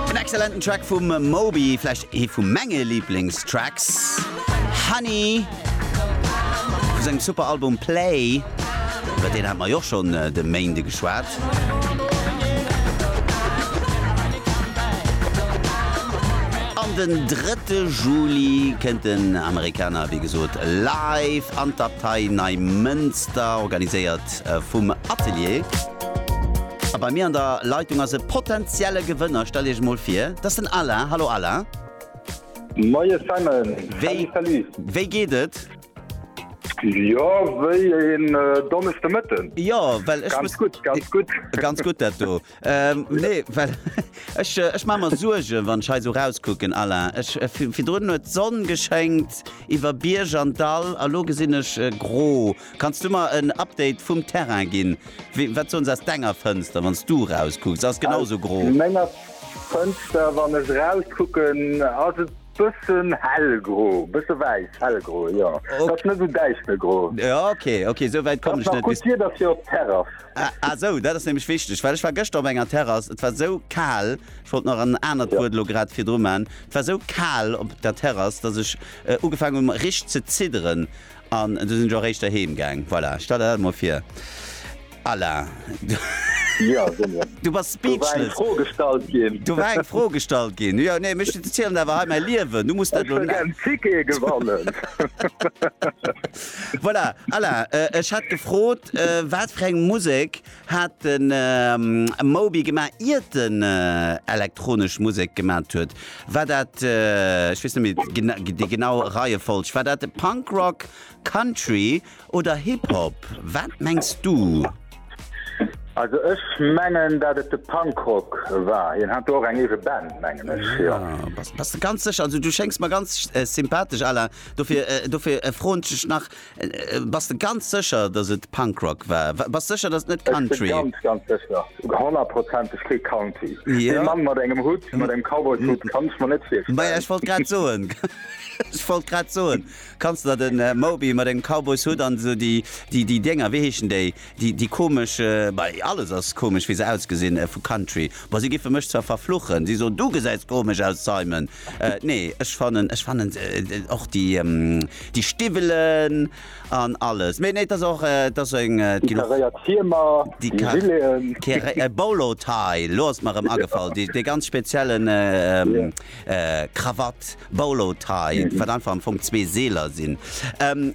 En excellenten Track vum Moby, vläicht ee vu menge Liblingstracks, Honey vu sengem super Album Play, iwwer deen hate mer jo och schonn de Méinde geschwat. Den 3 Juli kënnt den Amerikaner wéi gesot live an d'Abtei Neimënster, organiséiert Gast vum Atelier. A bei mir an der Leitung ass e potentielle Gewënner. Stellt Iech emol vir, dat ass den Alain. Hallo Alain. Moie Simon. Salut, salut. Wéi geet et? Jo, wéi een Donneschdemëtten. Jo, well ech muss. Ganz gutt, ganz gutt. Ganz gutt dat do. Ähm, nee, well ech, äh, ech ma mer Suergen, wann schei so rauskucken, Alain. Ech äh, fir fir drun huet d'Sonn geschenkt iwwer Bierg an Dall a lo gesinn ech äh, gro. Kanns du mer en Update vum Terrain ginn? Wéi, wat soen se aus denger Fënster, wann s du rauskucks? Ass genau so gro? Menger Fënster, wann ech rauskucken, ass et Bëssen hellgro, bësse wäiss hellgro, jo, et ass net esou däischtergro. Ok, ok, esou wäit komm ech net. Gutt Wieder ass fir op d'Terrass. Ah sou, dat ass nämlech wichteg, well ech war gëschter op enger Terrass, et war esou kal, ech wollt nach en anert Wuert elo grad virdru maachen, et war esou kal op der Terrass, datt ech ugefaangen hunn richteg ze zidderen An du sinn ech och éischter heem gaang. Voilà, stell der dat emol vir, Alain. Jo, Sonja. Du bass speechless. Do war eng Fro gestallt ginn. Do war eng Fro gestallt ginn. Jo, nee, ech zielen awer hei mäi Liewen. Du muss dat elo. Ech wëll gären Tickete gewannen. Voilà, Alain, ech hat gefrot, wat fir eng Musek. Hat den Moby gemaach iert en elektronesch Musek gemat huet. War dat, ech weess net méi déi genau Reiefolg, war dat Punk Rock, Country oder Hip Hop? Wat mengs du? Also ech mengen dat et de Punk Rock war. Hien hat do och eng eege Band mengen ech, jo. Bass de ganz sécher? Also du schéngs mer ganz sympathesch Alain, dofir dofir froen ech dech nach. Bass de ganz sécher dass et Punk Rock war? Bass sécher dass et net Country? Ech sinn ganz ganz sécher, honnertprozenteg kee Country. Dee Mann mat engem Hutt, mat engem Cowboys Hutt kann ech mer net virstellen. Majo ech wollt grad soen, ech wollt grad soen, kanns de der den Moby mat engem Cowboys Hutt an esou déi déi Dénger wéi heeschen déi? Déi komesch, bei alles ass komesch wéi se ausgesinn vu Country, boah si giffe mech zwar verfluchen, si soen du gesäis komesch aus Simon, nee ech fannen, ech fannen och déi Stiwwelen an alles, mee nee t'ass och, t'ass eng, déi karéiert Hiemer, déi Gileten, bolo tie, lo ass et mer rëm agefall, dee ganz speziellen. Krawatt, Bolo Tie, wat einfach am Fong zwee Seeler sinn.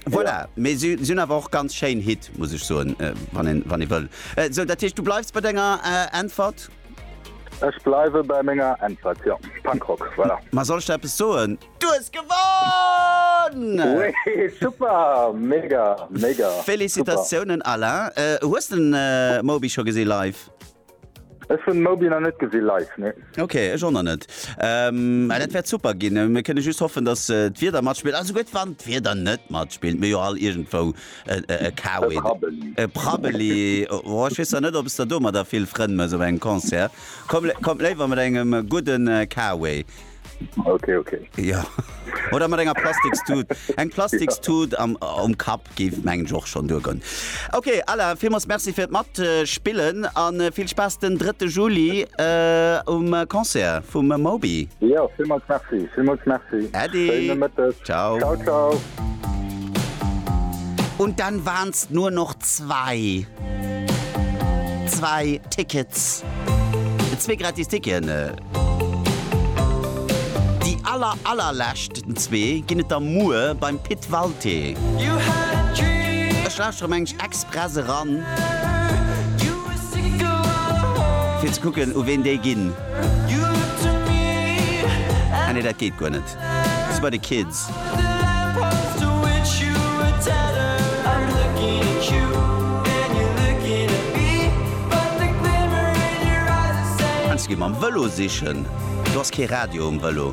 Voilà, mee si hunn awer och ganz schéin Hitt, muss ech soen, wann een, wann ee wëll. Sou, dat heescht, du bleifs bei denger Äntwert? Ech bleiwe bei menger Äntwert, jo, Punkrock, voilà. Ma soll ech der eppes soen? Du hues gewonn! Oui, super! Mega, mega! Super! Félicitatiounen, Alain. Hues de Moby scho gesi live? Ech hunn Moby nach net gesi live, nee. Ok, ech och nach net. Ähm, mä dat wäert super ginn. Mir kënne just hoffen, datt d'Wieder matspillt. A souguer wann d'Wieder net matspillt, mir jo all iergendwou e e Kawe. E Prabbeli. E Prabbeli. Oh, ech weess zwar net, ob s der domadder vill Frënn mëss op engem Concert. Komm, komm léiwer mat engem gudden Kawe. Okay, okay. Ja. Oder mat enger Plastikstut. Eng Plastikstut ja. am, um Kapp géif meng Joch schon duergoen. Okay, Alain, villmals Merci fir mat äh, spillen an äh, vill Spaß den 3. Juli äh, um äh, Concert vum äh, Moby. Ja, villmals Merci. Villmals Merci. Äddi. Ciao. Ciao, ciao. Und dann waren's nur noch zwei. Zwei Tickets. Zwei gratis Tickets. Äh. Déi aller aller lescht zwee ginn et da muer beim Pit Walté. Ech lauschtere meng ech express eran fir ze kucken u ween déi ginn. Ah nee dat geet guer net. Lamppost. It's about the kids. Kennst du gi mam Vëlo sichen? Do ass kee Radio um Vëlo.